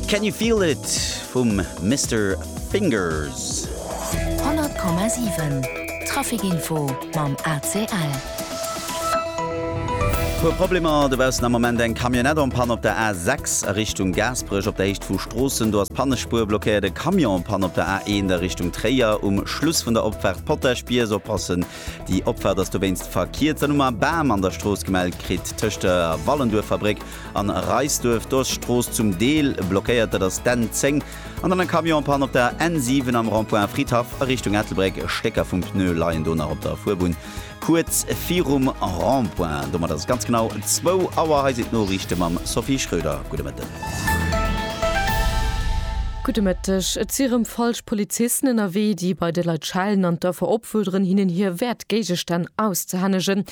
Can You Feel It vum Mister Fingers. 100,7 Trafic Info mam ACL. Puer Problemer dobaussen am Moment eng Camionnette en panne op der A6 a Richtung Gaasperech op der Héicht vu Stroossen. Do ass d'Pannespuer blockéiert. E Camion en panne op der A1 a Richtung Tréier um Schluss vun der Opfaart Potaschbies. Oppassen, déi Opfaart ass dowéinst verkiert. Dann hu mer e Bam an der Strooss gemellt kritt tëscht der Wallenduerfabréck An Reisduerf do ass d'Strooss zum Deel blockéiert, dat ass d'N 10. An dann e Camion en panne op der N 7 am Rond-point Fridhaff a Richtung Ettelbréck. Stécker vum Pneu leien do nach op der Fuerbunn kuerz virum Rond-point. Domat ass et ganz genau zwou Auer. Hei sinn d'Noriichte mam Sophie Schröder. Gudde Mëtten. Gudde Mëtteg. Et si rëm falsch Polizisten ënnerwee, déi bei de Leit schellen an d'Affer opfuerderen, hinnen hir wäert Géigestänn auszehännegen.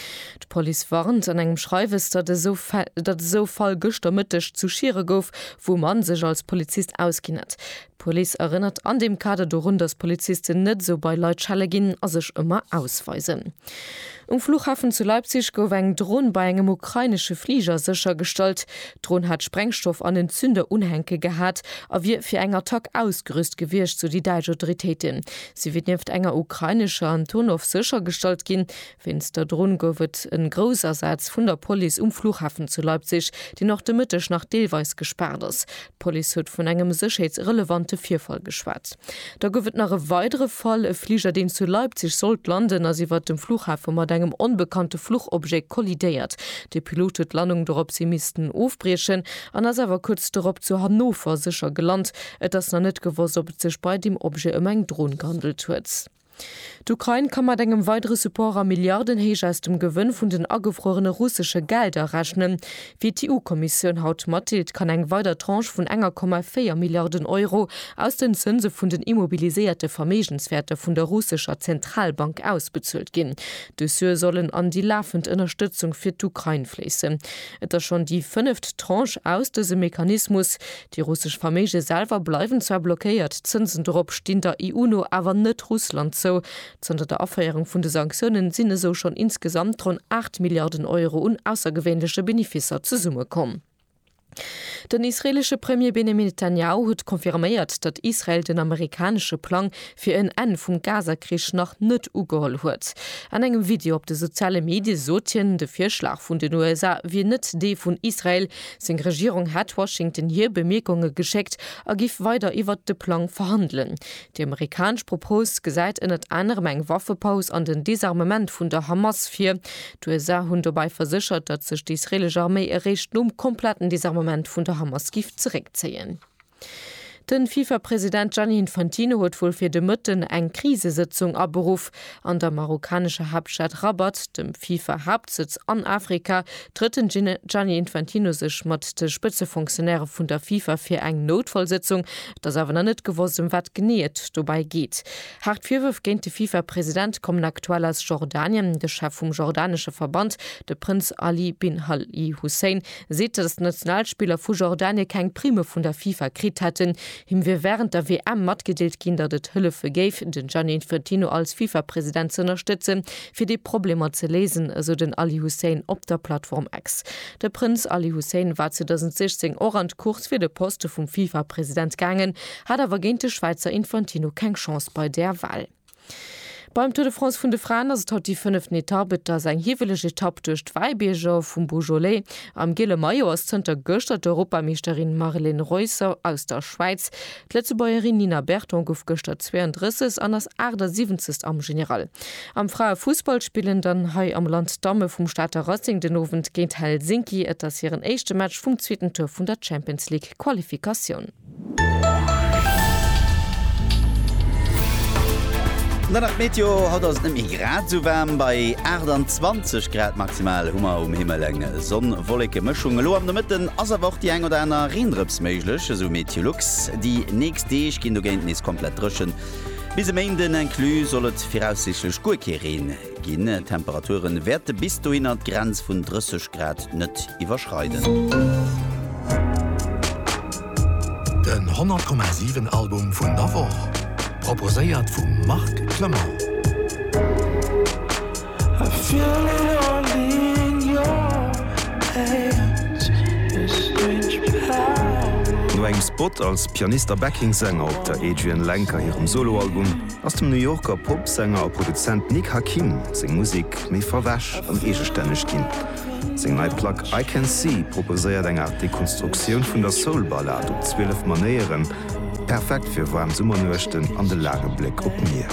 D'Police warnt an engem Schreiwes, datt esou Fall gëschter Mëtteg zu Schiere gouf, wou e Mann sech als Polizist ausginn hätt. D'Police erënnert an deem Kader dorun, datt Polizisten net esou bei Leit schelle ginn a sech ëmmer ausweisen. Um Fluchhafen zu Leipzig gouf eng Dron bei engem ukrainesche Fliger séchergestallt. D'Dron hat Sprengstoff an en Zünderunhänke gehat a wier fir eng Attack ausgerüst gewiescht, sou déi däitsch Autoritéiten. Si wier nieft enger ukrainescher Antonov séchergestallt ginn. Wéinst der Dronn gouf et en Groussasaz vun der Police um Flughafen zu Leipzig, deen och de Mëtteg nach deelweis gespaart ass. D'Police huet vun engem sécherheetsrelevante Virfall geschwat. Da gouf et nach e weidere Fall, E Fliger, deen zu Leipzig sollt landen, ass iwwert dem Flughafe mat engem onbekannte Fluchobjet kollidéiert. De Pilot huet d'Landung doropshi missten ofbriechen an ass awer kuerz dorop zu Hannover sécher gelant. Et ass nach net gewosst, ob et sech bei deem Objet ëm eng Dron gehandelt huet. D'Ukrain ka mat engem weidere Support a Milliardenhéicht aus dem Gewënn vun den agefruerene russesche Gelder rechnen. Wéi d'EU-Kommissioun haut matdeelt, kann eng weider Tranche vun enger Komma véier Milliarden Euro aus den Zënse vun den immobiliséierte Verméigenswäerter vun der russescher Zentralbank ausbezuelt ginn. Dës Sue sollen an déi lafend Ënnerstëtzung fir d'Ukrain fléissen. Et ass schonn déi fënneft Tranche aus dësem Mechanismus. Déi russesch Verméige selwer bleiwen zwar blockéiert, d'Zënsen dorop stinn der EU no awer net Russland zou. Zanter der Aféierung vun de Sanktiounen sinn esou schonn insgesamt ronn 8 Milliarden Euro un aussergewéinleche Benefisser zesummekomm. Den israeelesche Premier Benjamin Netanjahu huet confirméiert, datt Israel den amerikanesche Plang fir en Enn vum Gaza-Krich nach net ugeholl huet. An engem Video op de soziale Medie sot hien, de Virschlag vun den USA wier net dee vun Israel, Seng Regierung hätt Washington hir Bemierkunge geschéckt a giff weider iwwert de Plang verhandelen. Déi amerikanesch Propos gesäit ënnert anerem eng Waffepaus an den Desarmement vun der Hamas vir. D'USA hunn dobäi verséchert, datt sech déi israelesch Arméi eréischt nom kompletten Desarmement vun der Hamas giff zeréckzéien. Den Fifa President Gianni Infantino huet wuel fir de Mëtten eng Krisesëtzung aberuff. An der marokkanescher Haaptstad Rabat, dem Fifa Haaptsëtz an Afrika, trëtt den Gianni Infantino sech mat de Spëtzefonctionnairë vun der Fifa fir eng Noutfallsëtzung. Et ass awer nach net gewosst ëm wat genee et dobäi geet. Haart Virwërf géint de Fifa President kommen aktuell aus Jordanien. De Chef vum jordanesche Verband, de Prënz Ali bin Al-Hussein, seet, datt d'Nationalspiller vu Jordanien keng Primme vun der FIFA kritt hätten. Him wier wärend der WM matgedeelt ginn, datt et hëllefe géif, den Gianni Infantino als FIFA-President ze ënnerstëtzen, fir déi Problemer ze léisen, esou den Ali Hussein op der Plattform X. De Prënz Ali Hussein war 2016 och an d'Course fir de Poste vum FIFA-President gaangen, hat awer géint de Schwäizer Infantino keng Chance bei där Wal. Beim Tour de France vun de Fraen ass et haut déi fënneften Etapp. Et ass eng hiwweleg Etapp duerch d'Wäibierger vum Beaujolais. Am giele Maillot ass zënter gëschter d'Europameeschterin Marlen Reusser aus der Schwäiz. D'Lëtzebuergerin Nina Berton gouf gëschter 32 an ass 78. am General. Am Fraefussball spillen dann hei am Land d'Damme vum Stater Racing den Owend géint Helsinki. Et ass hiren éischte Match vum zweeten Tour vun der Champions League-Qualifikatioun. An dann nach d'Meteo, haut ass et net méi grad esou waarm. Bei 28 Grad maximal hu mer um Himmel eng Sonn-Wolleke-Mëschung. Elo am Nomëtten ass awer och déi eng oder aner Reendrëps méiglech, esou Meteolux. Déi nächst Deeg ginn dogéint nees komplett dréchen, bis e Méinden inclus soll et viraussiichtlech guer kee Reen. Ginn. D'Temperature wäerte bis dohinner d'Grenz vun 30 Grad net iwwerschreiden. Den 100,7 Album vun der Woch, proposéiert vum Marc Clement. No engem Spot als Pianist a Backing-Sänger op der Adrianne Lenker hirem Solo-Album ass dem New Yorker Pop-Sänger a Produzent Nick Hakim seng Musek méi verwäsch an eegestänneg ginn. Seng nei Plack I Can See proposéiert eng Aart Dekonstruktioun vun der Soul-Ballad op 12 Manéieren, perfekt fir waarm Summernuechten an de laange Bléck op d'Mier.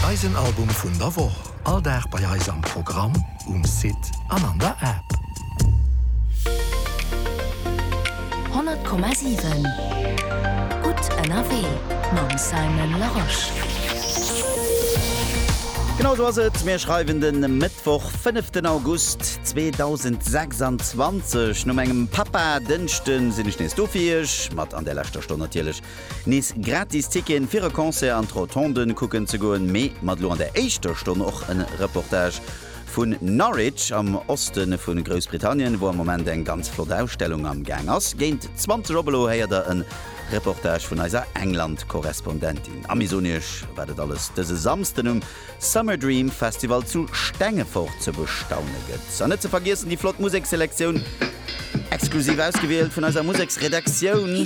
Eisen Album vun der Woch. All Dag bei eis am Programm, um Site an an der App. 100,7 Gutt ënnerwee mam Simon Larosche. Genau sou ass et, mir schreiwen de Mëttwoch, fënneften August 2026. Nom engem Papa-Dënschden sinn ech nees do fir Iech, mat an där leschter Stonn natierlech Nees gratis Ticketen fir e Concert an d'Rotonden kucken ze goen, mee mat elo an der éischter Stonn och en Reportage vun Norwich am Osten vun Groussbritannien, wou am Moment eng ganz flott Ausstellung am Gaang ass. Géint 20 op elo héiert der en Reportage vun eiser England-Korrespondentin. A mir soen iech wat et alles dëse Samsden um. Summer Dream Festival zu Stengefort ze bestaune gëtt. An net ze vergiessen déi flott Museksselektioun, exklusiv ausgewielt vun eiser Museksredaktioun.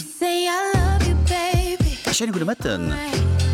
E schéine gudde Mëtten.